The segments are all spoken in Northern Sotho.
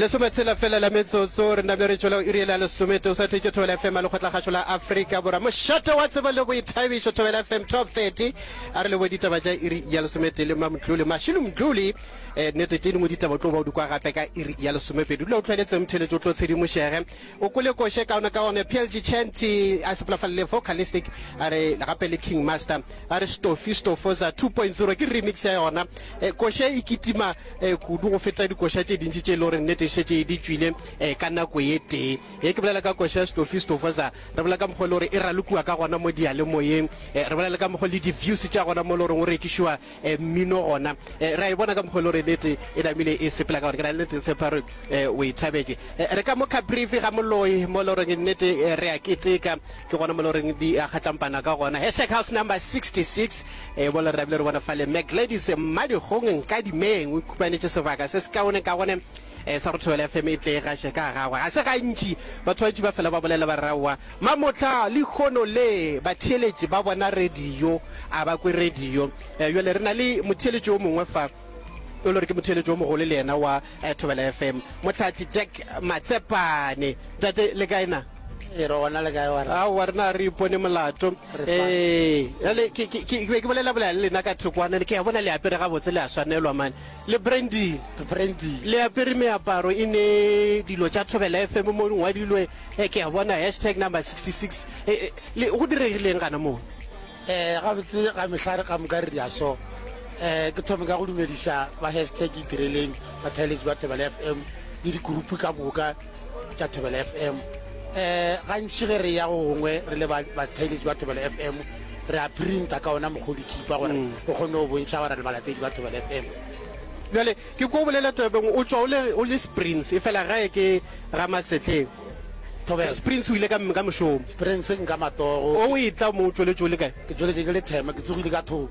lesome tshela fela la metsotso re name re tšwela iri la lesome teo sa thetse thobela fm a lekgotlakgašo la aforika borwa mošate wa tseba le boithabišo thobela fm 1230 a re lebo ditaba ja iri ya lesometee le mamdlole mašilo mdlole um eh, nete tše dingwe ditaba tlo ba o dikwa gape ka iri ya lesomepedi dula o tlhweletseng mtheletso o tlo tshedimošege O kwele koša e kaone kaone. Plg Chanty a sepela fa le vocalistic a re gape le King Master a re Stofi Stofoza 2.0 ke remix ya yona. Eh, koša e e kitima eh, kudu go feta dikoša tše dintši tše e le gore nnete e šetše di tšwile eh, ka nako ye tee. Ye ke bolela ka koša ya Stofi Stofoza re bolela ka mokgwa e le gore e ralokiwa ka gona mo diyalemoyeng. Eh, re bolela le ka mokgwa le di-views tša gona mo e le goreng o rekišiwa eh, mmino gona eh, ra e bona ka mokgwa le gore nete e namile e sepela ka gore ke na le nete tshepa gore eh, o e thabetse eh, re ka mo caprifi ga moloi mo le goreng nete eh, re a keteka ke gona mo le goreng di a kgatlampana ka gona hashtag house number 66 eh, bo le re rabile re bona fale mac ladies mmadikgong nka dimeng o ikhupanetse sebaka se se kaone ka gone E sa go thobela FM e tle e gaše ka gagwe. Ga se gantši batho bantši ba fela ba bolela ba re, Aowa, mamohla lehono le batheeletši ba bona radio, a ba kwe radio. E, bjale re na le motheeletši o mongwe fa, o le gore ke motheeletši o mogolo le yena wa Thobela FM, Mohlahli Jack Matsepane. Tate, le kae na? E, re gona, le kae wena? Aowa, rena ga re ipone molato. Re E, fine. bjale ke, ke, ke, ke be ke bolela-bolela le lena ka thoko, a ne ke a bona le apere gabotse, le a swanelwa mane. Le Brandine, Brandine, le apere meaparo e ne dilo tša Thobela FM mo ngwadilwe eh, ke a bona hashtag number 66 eh, eh, le go diregileng gana moo? Eh, gabotse ga mehlare ka moka re dia so eh, ke thome ka go dumediša ba hashtag itireleng bathaeletši ba Thobela FM le dikurupu ka moka tša thobela fm um gantši ge re ya go gongwe re le bathaeletši ba thobela fm re a printa ka ona mokgwa o dithipa gore mm. o kgone go bontšha gore re balatedi ba thobela fm jale ke ko bolela tebeng o tswa o le springs e fela gae ke ramasetleng thobela springs o ile ka mošomo springs nka matogo o e tla mo o tsweletse o le kae ke tsweletse ke le thema ke tsogile ka thoko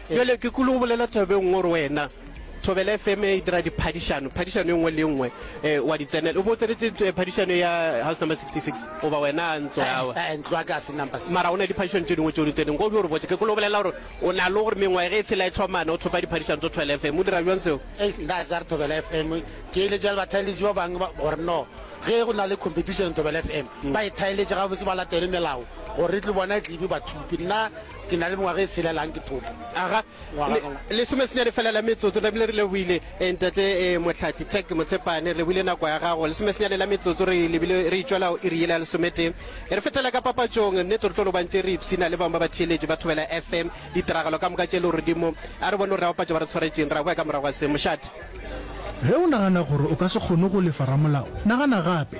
Bjale ke kwele o bolela thabeng nngwe o re wena Thobela FM e dira diphadišano, phadišano e nngwe le e nngwe eh, wa di tsenela. O bo o tsenetse eh, phadišano ya house number 66 goba wena a ntlo yago. Eh, ntlo ya ka a se number 66. mara o na le diphadišano tse dingwe tse o di tseneng ko di o re botse ke kolo o bolela gore o na le gore mengwae ge e tshela e tlhomana o thopa diphadišano tso thwela fm o dira bjang seo Eh, nka sa re thobela fm ke ile jale bathaeletši ba bangwe ba- gore no ge go na le competition thobela fm ba e thaeletše gabotse ba latele melao gore re tle bona e tlebe bathupi nna Ke na le mengwaga e selelang ke thopa. Aga, ngwaga ka ngwaga. Lesomesenyane fela la metsotso, Bibele re lebohile, eh, Ntate, eh, Mohlahli Tech Motshepane, re lebohile nako ya gago. Lesomesenyane la metsotso re lebile, re itšwela go iri yela lesometee. E re fetela ka papatšong, nnete re tlo lobantše re ipshina le bangwe ba batheeletši ba Thobela FM, ditiragalo ka moka tše legodimo. A re bone gore re a bapatša ba re tshwaretšeng, re a boya ka morago ga se. Mošate. Ge o nagana gore o ka se kgone go lefa ramolao, nagana gape.